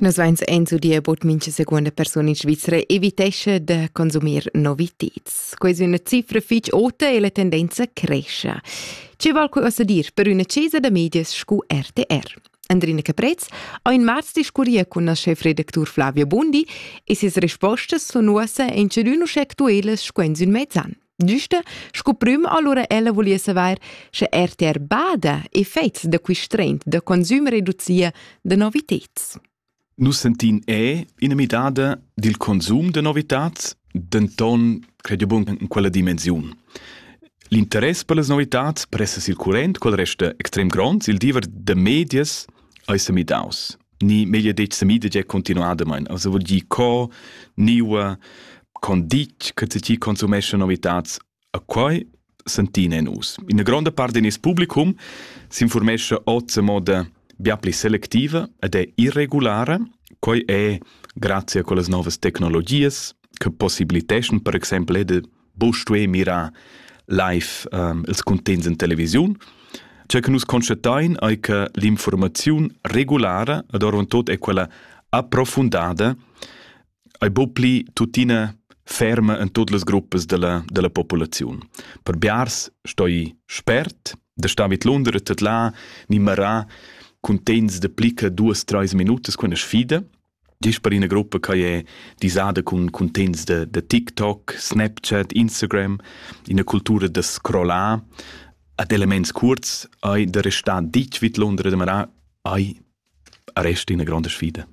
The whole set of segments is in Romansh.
Nus veins eins udia bod mincha secunda persuna in Svizra evitescha da consumir novitads. Quei è una cifra fitg ota e la tendenza cresce. Ce val qualcosa dir per una cesa da medias scu RTR? Andrina Caprez ha in marz discurria con la chefredactur Flavia Bundi e ses respostas sun uossa in chedün uschè actuelas sco in sün mezzan. Güste, sco prüm allura ella vuliesse vair, sche RTR bada effects da quist trend da consum reducia da noviteds. Nus sentin è ina midada dil consum de novitats, denton credo bun in quella dimensiun. L'interess per las novitats pressa circulent col resta extrem gronds il diever de medias eis midaus. ni meglio detg semida già continuadamain also vuol dir co niua con ditg che ti consumesce novitats a quai sentina in us in gronda parte del publicum s'informesce oz a moda bia pli selectiva ed è irregulare quai è grazie a quelle nuove tecnologie che possibiliteschan per esempio de bo stué mirar live um, ils cuntegns in televisiun. Ciò che nus constatain è che l'informazione regulare, ad orvon tot è quella approfundada, è bo pli tuttina ferma in tutte le gruppe della, della popolazione. Per Biars stoi spert, da sta mit Londra tot là, ni marà cuntegns de plica duas, treis minutas con sfida, Gist per ina gruppa che è disada cun cuntegns da, da TikTok, Snapchat, Instagram, ina cultura da scrollar ad elements kurz hai da restare ditg vid Londra demarà hai rest ina grande sfida.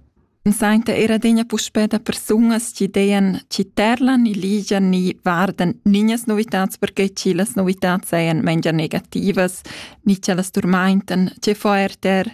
Sainta era degna puspè da persunas chi dean chi terlan e ligian ni vardan niñas novitats perché chi las novitats sajan mengia negativas, ni chi las turmaintan, che fo er ter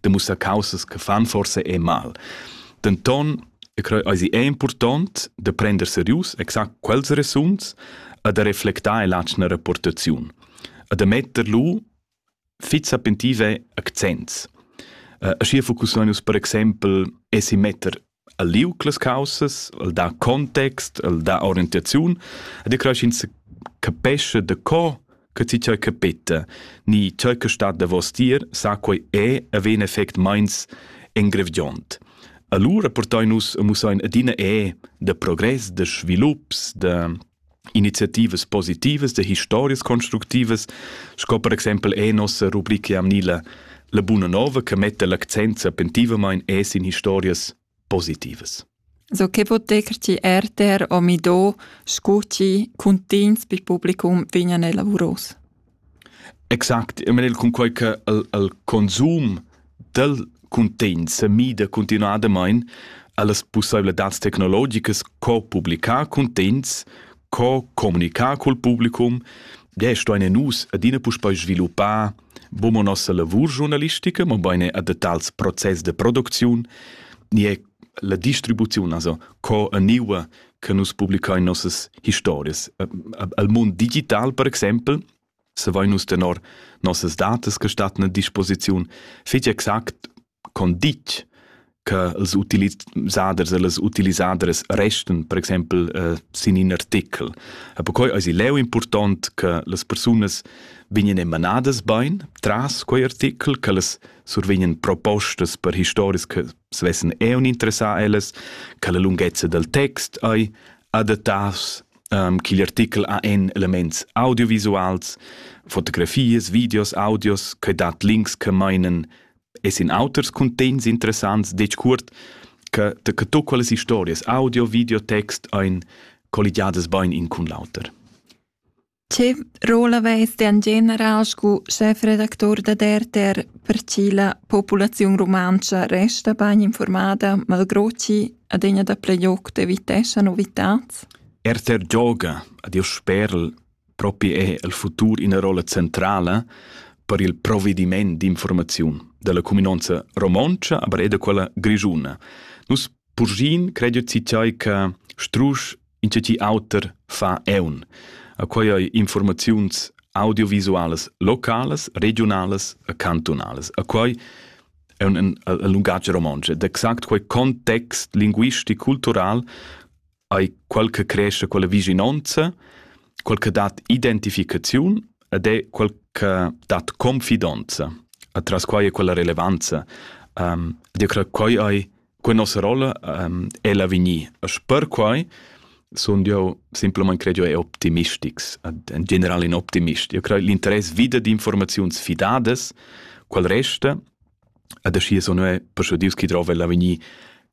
de mussar causas che fan forse e mal. Denton, e creo eisi è important de prender serius exact quels resuns e de reflectar l'atschna rapportaziun. E de metter lu fit sapentive accents. Uh, schier focussonus per exempel esi metter el liug las caussas, el dà context, el dà orientaziun ed io cresch ins capesce da co che ti tgei capeta ni tgei che stat davos dir sa quei è e ven effect meins engrevdiont. Allura portai nus e mussein adina è de progress, de svilups, de iniziativas positivas e historias constructivas, sco per exempel è nossa rubrica amnila la buna nova che metta l'accent sapentivamain es in historias positivas. So che poter ti erter o mido scuti cuntins pi publicum vignan elavuros? Exact, eu mel eir cunquai cha il il consum dal cuntegn sa mida cuntinuadamaing a las pussaivladads tecnologicas co publichar cuntegns, co comunichar cul publicum, desch stuaina nus adina puspei sviluppar bun mo nossa lavur giurnalistica, mobain eir da tals process da producziun, nie la distribuziun, also co gnüa che nus publicain nossas historias. Al mund digital, per exempel, se vai nus tenor nossas datas che stattan a disposiziun, fetg exact con ditg che els utilisaders e les utilisaders resten, per exempel, eh, sin in artikel. E per cui è leu important che les persunas vegnan emanadas bein tras quei artikel, che les survegnan propostas per historis che svessen eu interessar ellas, che la lunghezza del text ei adattaus, um, ch'igl artikel ha en elements audiovisuals, fotografies, videos, audios, che dat links che meinen, es in auters contents interessants, dec curt, che de che tu quelles historias audio, videotext ein colligiadas bein in cun l'auter. Tge rolla vess ti en general sco schefredactur dad RTR per che la populaziun rumantscha resta bain informada, malgrà ch'i adina dapli giocs eviteschan novitads? RTR gioga ad il sperl propi è el futur ina rolla centrala per il provediment d'informaziun da la cuminanza romontscha, aber er da quella grischuna. Nus Purschin credit si tgei che strusch insatgi auter fa eun. A quei ei informaziuns audiovisualas localas, regionalas e cantonalas. A quei è un, un, un lungatg romontsch ed exact quei context linguistic cultural hai quel che cresce quella vicinanza, quel che dat identificaziun ed è quel che dat confidenza. Atras quai è quella relevanza. Um, ed io credo che hai quella nostra rolla um, è l'avegnir. E per quai sono io semplicemente credo è optimistics, in generale in optimist. Io credo l'interesse vida di informazioni fidate, quel resta, ed así sono è per che Dios chi trova l'avegnir